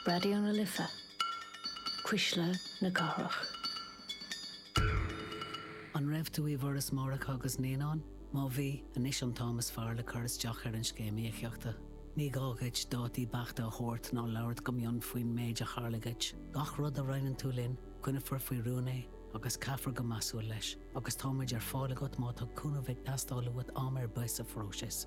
Raidió na Life, Cuisle na Cathrach. An raibh tú i bhForas Máithreacha agus Naíonán? Má bhí, anois an t-am is fearr le cur isteach ar an Scéim Íocaíochta. Ní gá dhuit dátaí beachta a thabhairt ná labhairt go mion faoin méid a tharla dhuit. Gach rud a roinneann tú linn, coinneofar faoi rún é agus caithfear go measúil leis, agus tá muid ar fáil agat má tá cúnamh ag teastáil uait am ar bith sa phróiseas.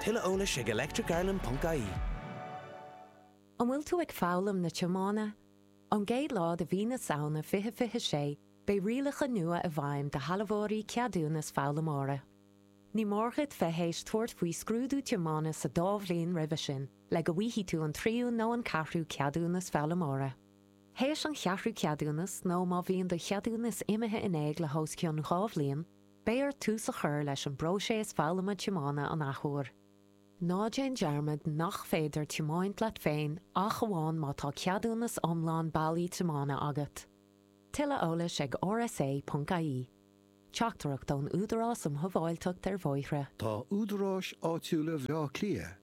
Tuilleadh eolais ag electricireland.ie. An bhfuil tú ag foghlaim na tiomána? Ón gcéad lá de mhí na Samhna 2026 beidh rialacha nua i bhfeidhm do shealbhóirí ceadúnas foghlaimeora. Ní mór duit bheith théis tabhairt faoi scrúdú tiomána sa dá bhliain roimhe sin le go bhfaighidh tú an tríú nó an ceathrú ceadúnas foghlaimeora. Théis an cheathrú ceadúnas, nó má bhíonn do cheadúnas imithe in éag le hos cionn dhá bhliain, Beidh ort tús a chur leis an bpróiseas foghlama tiomána an athuair. Ná déan dearmad nach féidir tiomáint leat féin ach amháin má tá ceadúnas iomlán bailí tiomána agat. Tuilleadh eolais ag rsa.ie. Teachtaireacht ón Údarás um Shábháilteacht ar Bhóithre. Tá údaráis áitiúla Bhleá Cliath